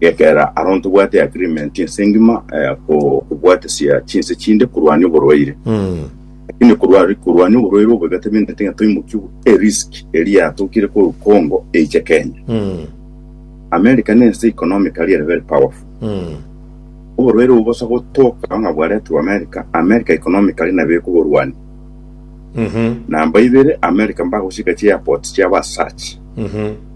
Gekera aro ntobwate agreement ense engima eh, ko- kobwatesia chinse chinde korwania oborwaire lakini korwa- korwania oborwaire obo igatebindete ng'a toimokiwe erisk eri yatokire ko- congo eiche kenya america nense economically ere very powerful oborwaire obo bosa gotoka ng'a bwaretirwe america america economically nabo ekoborwania namba ibere america mbagochika chi airport chiabo as such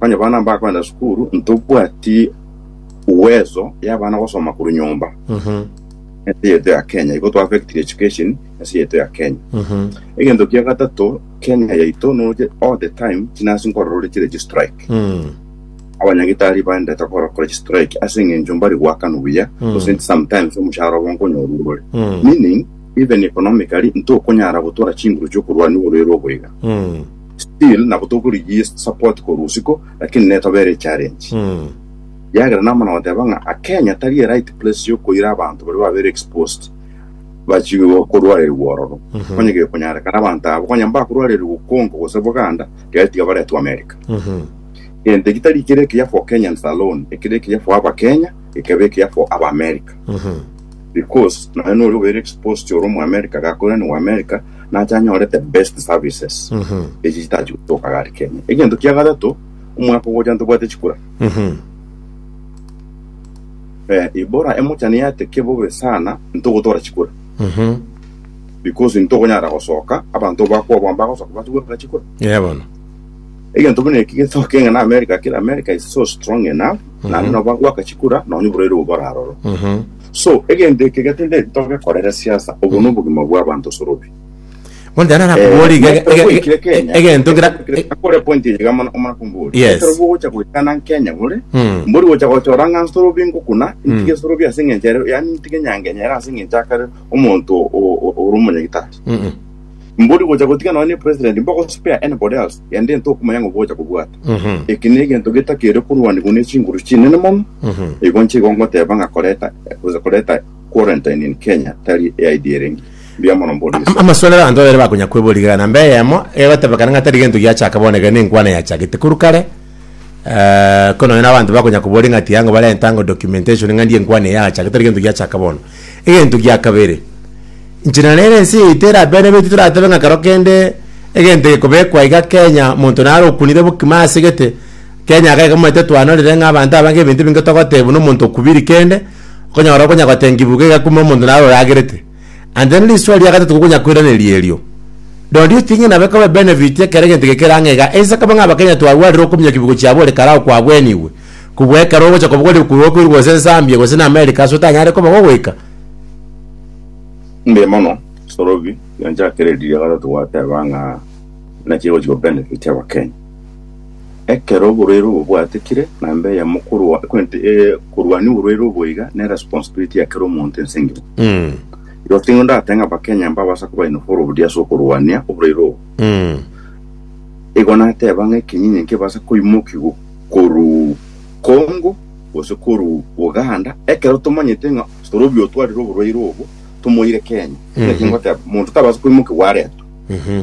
Onye abana mbakoenda sukuru, ntobwati uwezo y'abana gosoma korwa nyomba ense yaito ya Kenya, igo to affectire education ense yaito ya Kenya. Egento kia gatato, Kenya yaito noche all the time chinasi nkorora ore chire chistrike. Abanyagitari baendete gokora kore chistrike ase eng'encho mbari goakanwa buya gose sometimes omoshahara obo nkonyorwa igoro. Meaning even economically ntokonyara gotora chinguru chiokorwania oborwaire obo iga. still nabo tokorigia support korwa usiko lakini netobere echallenge Mm. yagera namana goteba ng'a a Kenya tari a right place yokoira abanto baria babere exposed bachigwe korwarerirwa ororo Mhm. onye gekonyarekana abanto abo onye mbakorwarerirwa Congo gose Buganda gari tiga baretwe America Mhm. gento eki tari kere ekiya for Kenyans alone ekere ekiya for aba Kenya ekebe ekiya for aba America Mhm. because nonya nori obere exposed ore omu America gakoira ni wa America nache anyorete best services Mhm. echi chitachi gotoka gari kenya egento kia gatato omwaka ogocha ntobwate chikura Mhm. eh, ibora emochani yateke bobe sana ntogotora chikura Mhm. because ntogonyara gosoka abanto bakwabwa bagosoka batugora chikura Yeah, bono. egento buna eki getoke ng'a na america kira america is so strong enough nandi nabo bagwaka chikura nonye borwaire obo boraroro Mhm. So, egento eke getindeti togekorere siasa, obo nobogima bwa abanto sorobe. Bono tari nara kobori iga- iga- iga- Goikire Kenya, egento ngira akore point engiga mono omana kombori. Yes. Ekero gocha goikana Kenya gore, Mm. mbori gocha gochora ng'a nsorobi ngokuna, ntige sorobi ase eng'encho ere, yaani ntige nyangenyere ase eng'encho akare omonto o- o- ore omonyagitari. Mm, mm. Mbori gocha gotiga nonya ne president mbogo spare anybody else and then tokumanya ngo bocha kobwata Mhm. eki ne egento getakere korwanigwa ne chinguru chinene mono Mhm. igo nche igo ngoteba nga koreta gocha koreta quarantine in Kenya tari eaidi erenge mbuya mono mbori Am- amaswalero abanto babere bakonya kweborigerana mbe eyemo egotebekana ng'a tari gento giachaka bono iga nenkwana yachagete korwa kare Eh, ko nonya n'abanto bakonya koboria ng'a ati yango barenta ango documentation ng'a ndie nkwane yacha, getari gento giachaka bono. Egento gia kabere, inche na nere ense yaito erabere beti toratebe ng'a kero kende egento gekobekwa iga Kenya monto naro okunire bokima ase gete, Kenya iga egomanyete twanorire ng'a abanto abange ebinto ebinge togotebwa nomonto okubiri kende, okonyora okonya gotengiwa iga kuma omonto naro oragerete. And then risoa ria gatato kokonya koiraneria erio. Do you think nabe kobe benefit ekero egento eke kerang'a iga? Ense kobe ng'a Abakenya twarwarire okominyokia ebigo chiabo ore karao kwabwenigwe. Kubua ekero ogocha kobogorera ekurwa okoirwe gose Nsambia gose na America ase otanyare koba gogoika. Mbuya mono Sorobi, rianchakere riria gatato gwateba ng'a naki egochi ko benefit Abakenya. Ekero oborwaire obo bwatikire, namba eyemo korwa- kwenti- eh, korwania oborwaire obo iga ne responsibility ya kera omonto ense engima. Mm. Igo tingo ndateba ng'a Abakenya mbabasa koba involved ase okorwania oborwaire obo. Mm. Igo nateba ng'a ekenyinyi nkebasa koimokigwa korwa Congo gose korwa Uganda, ekero tomanyete ng'a Sorobi otwarire oborwaire obo tomoire Kenya. Ekero Mhm. nkegoteba, omonto tabasa koimokigwa aretwe. Mhm.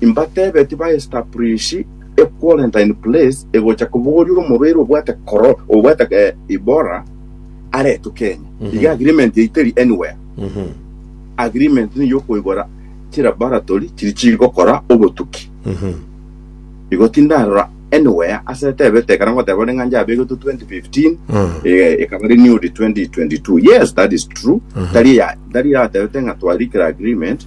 Imbatebe tiba establish a quarantine place egocha kobogoria omobere obwate koro obwate eh, ibora aretwe Kenya iga agreement eiteri anywhere agreement ni yokoigora chilaboratory chiri chigokora obotuki igo tindarora anywhere ase etebete ekero ngoteba ore ng'anja abegetwe 2015 eh, ekaba renewed 2022 yes that is true tari ya tari yatebete ng'a twarikire agreement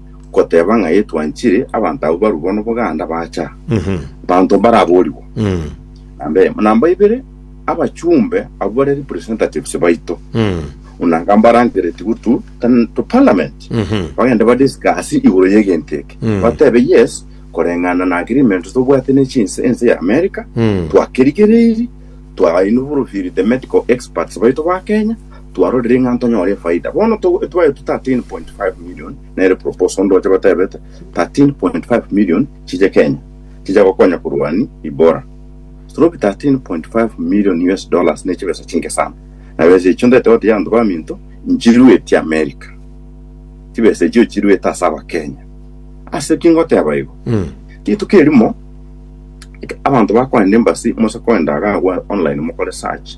goteba ng'a Yesu anchire, abanto abwo barue bono boganda bacha, abanto mbaraboorigwa. Namba emo. Namba ibere, abachumbe abwo bare representatives baito, buna nga mbarangeretigwe to, tan- to parliament, bagende badiscuss igoro y'egento eke, batebe yes, koreng'ana na agreement tobwate ne chinse ense ya America, twakerigereiri, twainvolviri the medical experts baito ba Kenya, Twarorire ng'a ntonyore efaida. Bono to etwaetwe 13.5 million nere proposal onde oche gotebete 13.5 million chiche Kenya chicha gokonya korwani Ibora. Stroke 13.5 million US dollars ne chibesa chinke sana. Na besa echio ndete gotegia abanto baminto nchiruetie America. Chibesa echio chiruete ase abakenya. Ase ki ngoteba igo? Rituko erimo abanto bakoenda embassy mose koenda agagwa online mokore search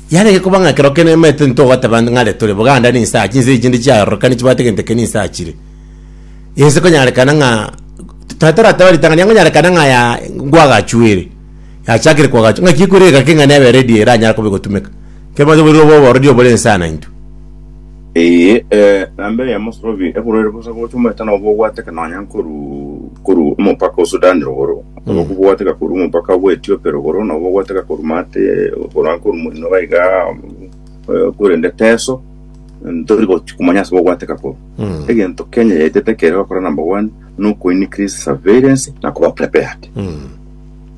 Yarenge koba ng'a ekero kende maitu ntitogoteba ng'are tore Buganda ninsa achi, inse chinde chiarorokani chibwate gento eke ninsa achire. Inse konyarekana ng'a tari torateba ritang'ani, konyarekana ng'a ya nkwagachwere, yachakire kwagachwa, ng'aki ekwire egake ng'a nebe ready eranyare koba egotumeka, kero bonsi oboriri obo obororiri obore inse aa naintwe. Ee, ee, na mbere ya Mosorovi, eborwaire bosa gocha omoeta nobo obwateka nonya nkoru koru omopaka o Sudan rogoro, nobo kobwateka koru omopaka bwa Ethiopia rogoro, nobo bwateka koru mate okorwa nkoru moino gaiga eh, korende teso ntori gochi komanya ase bobwateka koru. Mm. Egento Kenya yaetete kere gokora number one, no ko increase surveillance na koba prepared. Mm.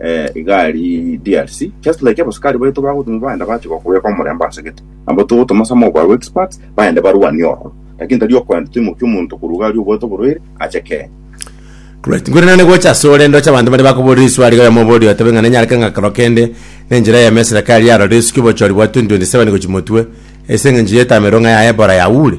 eh, iga ari DRC just like abasukari baito bagotuma baenda bache gokobeka omorembe ase gete nabo togotuma some of our experts baende barwanie ororo lakini tari okwenda toimokia omonto korwa iga ari obwate oborwaire ache Kenya Right. Ngure nane gocha ase ore ndoche abanto bare bakoborire iswari ga yomobori otebe ng'a nenyareke ng'a kero kende nenchera eyemo eserekari yarorire esuki obochori bwa 2027 gochi motwe ase eng'encho y'etamero ng'a ya Ebola yaure.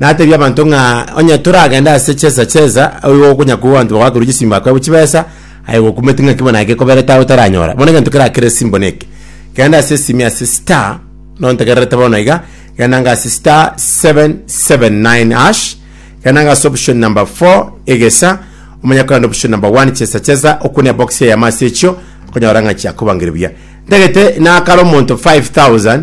Natebia abanto ng'a onye toragende ase chesa chesa, oyo okonya kobua abanto bagoakerwa chisimbo akoebwe chibesa, aye gokumeti ng'aki bono naki ekoberete aye otaranyora. Bono egento keria kere simbo neke, genda ase esimi ase star, nonya ntegererete bono iga, genda ng'a ase star 779 hash, genda ng'a ase option number 4 egesa, omanye kogenda option number 1 chesa chesa, okwane ebox eyemo ase echio, okonyora ng'a chiakobangeria buya. Ntagete nakare omonto 5000.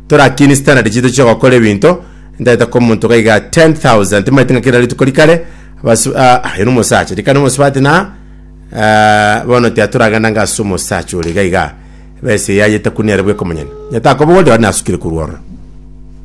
Torakini standard chiaito chi'ogokora ebinto, ntaete ko omonto iga iga 10,000 timaete ng'a kera rituko rikare abasu- ah, ah, ere omosacha rikare omosubati na ah, bono tiatoragenda ng'a ase omosacha ore iga iga besa eyayete kuniare bweka omonyene. Onye takoba oria, onye nasukire korwa ororo.